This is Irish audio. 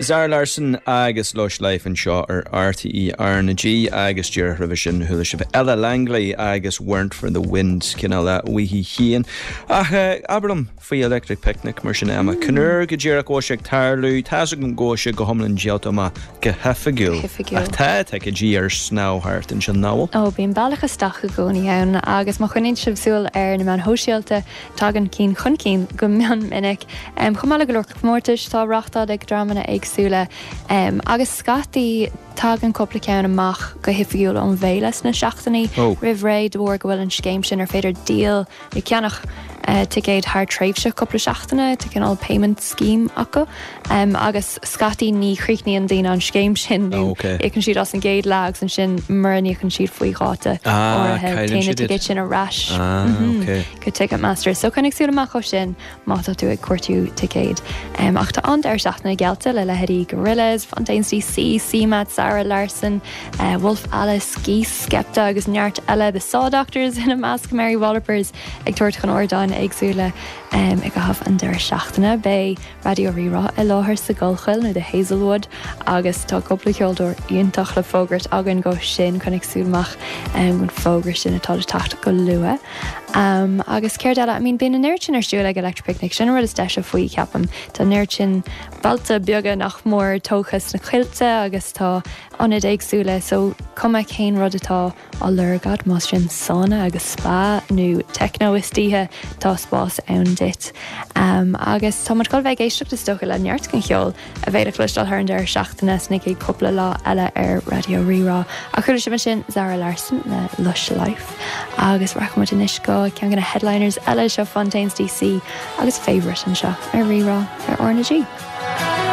Zara Larsson agus Lush Life anseo ar Rí-Rá ar RnaG agus díreach roimhe sin chuala sibh Ella Langley agus Weren't for the Wind, cineál le Weehee Sheehan. Ach abair liom faoi Electric Picnic mar sin Emma. Cén uair go díreach go bhfuil sé ag tarlú, tá's agam go bhfuil sé go hiomlán díolta amach go hoifigiúil. Oifigiúil. Ach tá ticéidí ar snámh thart ansin, nach bhfuil? Ó, bíonn bealach isteach i gcónaí ann agus má choinníonn sibh súil ar na meáin shóisialta, Tagann cinn chun cinn go mion minic. Chomh maith le go leor comórtais atá á reachtáil ag dreamanna éagsúla agus scaití tagann cupla ceann amach go hoifigiúil ón bhféile sna seachtainí roimh ré de bharr go bhfuil an scéim sin ar féidir díol nó ceannach ticéad thar tréimhse cupla seachtaine, tá cineál payment scheme acu. Agus scaití ní chríochnaíonn daoine an scéim sin nó íocann siad as an gcéad leath agus ansin mura n-íocann siad faoi dháta áirithe téann na ticéid sin ar ais go Ticketmaster. So coinnigh súil amach dó sin má tá tú ag cuartú ticéad. Ach tá an-deireadh seachtaine geallta le leithéidí Gorillaz, Fontaines DC, CMAT, Zara Larsson, Wolf Alice, Geese, Skepta agus neart eile, The Saw Doctors ina measc, Mary Wallopers ag tabhairt chun ardáin éagsúla i gcaitheamh an deireadh seachtaine. Beidh. Raidió Rí-Rá i láthair sa gCollchoill nó The Hazelwood agus tá cúpla ceoltóir iontach le fógairt againn dó sin so coinnigh súil amach don fhógra sin atá le teacht go luath. Agus céard eile? I mean bíonn an oiread sin ar siúl ag Electric Picnic, sin an rud is deise faoi cheapaim. Tá an oiread sin bailte beaga nach mór tógtha sna coillte agus tá ionaid éagsúla so cuma cén rud atá á lorg agat más sin sauna agus spa nó techno istoíche tá spás ann duit. Agus tá muid chun a bheith ag éisteacht is dócha le neart den cheol a bheidh le cloisteáil thar an deireadh seachtaine sna chéad chúpla lá eile ar Raidió Rí-Rá. Ach chuala sibh ansin Zara Larsson le Lush Life agus rachaidh muid anois go ceann de na headliners eile seo Fontaines DC agus Favourite anseo ar Rí-Rá ar RnaG.